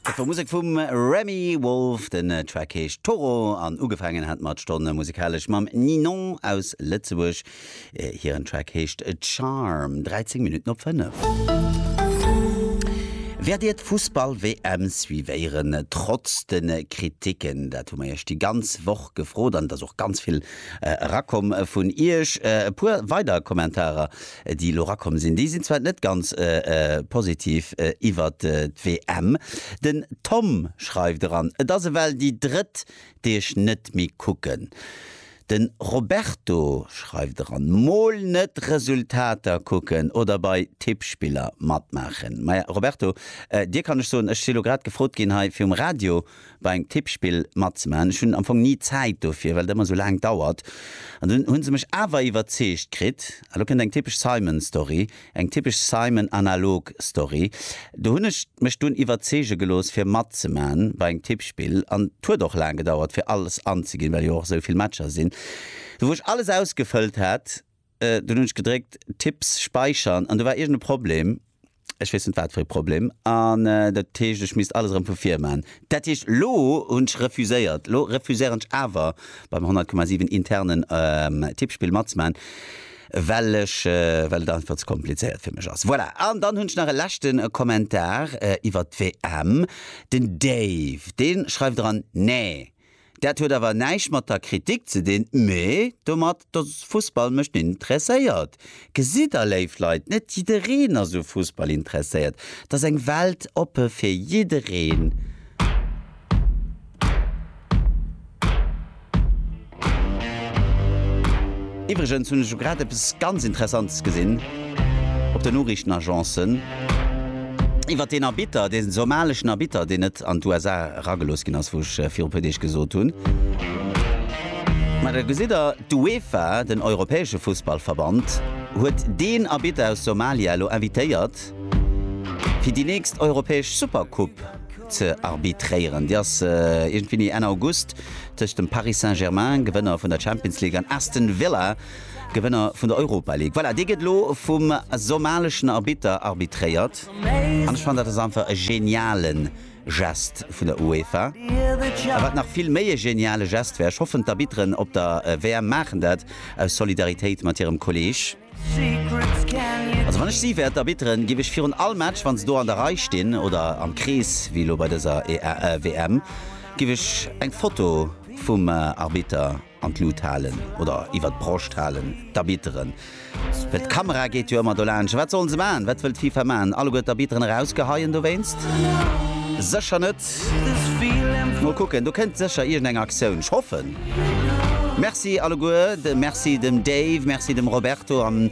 Dat war Musek vum Remi Wolf. Den Track heescht Toro an ugefaangen hat mer d'Stonn musikalesch mam Ninon aus Lëtzebuerg. Hiren Track heescht Charm. 13 Minutten op 5. Wäert Dir d'Fussball-WM suivéieren, trotz de Kriticken? Dat hu mer Iech déi ganz Woch gefrot an et ass och ganz vill erakomm vun Iech. E puer weider Kommentarer déi elo erakomm sinn, déi sinn zwar net ganz positiv iwwert d'WM. Den Tom schreift eran, et ass ewell déi drëtt, déi ech net méi kucken. Den Roberto schreift eran, mol net Resultater kucken oder bei Tippspiller matmaachen. Maja Roberto, dir kann ech soen, ech si elo grad gefrot ginn hei fir um Radio bei engem Tippspill matzemaachen. Ech hunn am Fong ni Zäit dofir, well et ëmmer esou laang dauert. An dunn hu se mech awer iwwerzeegt kritt. A lo kënnt eng typesch Simon-Story, eng typesch Simon-Analog-Story. Do hunn ech mech dunn iwwerzeege gelooss, fir matzemaachen bei engem Tippspill. An et huet och laang gedauert, fir alles anzeginn, well jo och esou vill Matcher sinn, wou ech alles ausgefëllt hat. Dunn hunn ech gedréckt Tipps späichern an do war iergend e Problem, ech weess net wat fir e Problem, an dat heescht ech misst alles erëm vu vir man. Dat heescht elo hunn ech refuséiert, elo refuséieren ech awer beim 100,7 internen Tippspill matzemaachen, well ech, well et einfach ze komplizéiert fir mech ass. Voilà, an dann hunn ech nach e leschte Kommentar iwwert d'WM, den Dave dee schreift eran, Nee! Dat huet awer näischt mat der Kritik ze dinn, mee domat, dass Fussball mech net interesséiert. Gesitt Der, léif Leit, net jiddereen ass u Fussball interesséiert. Et ass eng Welt oppe fir jiddereen. Iwwregens hunn ech elo grad eppes ganz Interessantes gesinn op den Noriichtenagencen. Iwwer deen Arbitter, dee somaleschen Arbitter, deen net an d'USA eragelooss ginn ass, wou ech viru puer Deeg gesot hunn. Mä da gesitt Der, d'UEFA, den europäesche Fussballverband, huet deen Arbitter aus Somalia elo invitéiert, fir déi nächst europäesch Supercoupe ze arbitréieren. Déi ass iergendwéini Enn August tëscht dem Paris Saint-Germain, Gewënner vun der Champions League, an Aston Villa. Gewënner vun der Europa League. Voilà, dee gëtt elo vum somaleschen Arbitter arbitréiert. An ech fannen, dat ass einfach e geniale Gest vun der UEFA. A wat nach vill méi e geniale Gest wär, ech hoffen, d'Arbitteren op der WM maachen dat aus Solidaritéit mat hirem Kolleeg. Also wann ech si wär, d'Arbitteren, géif ech virun all Match, wa se do an der Rei stinn oder am Krees wéi elo bei dëser WM, géif ech eng Foto vum Arbitter, An d'Lut halen oder iwwer d'Broscht halen, d'Arbitteren, well d'Kamera geet jo ëmmer dolaansch. Wat sollen se maachen? Wat wëll d'FIFA maachen? Alleguer d'Arbitteren erausgeheien dowéinst? Sécher net. Mol kucken, do kënnt sécher iergendeng Aktioun. Ech hoffen. Merci alleguer. Merci dem Dave, merci dem Roberto an.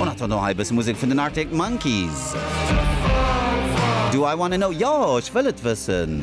On attend no hei bësse Musek vun den Arctic Monkeys. Do I wanna know, jo, ech wëll et wëssen.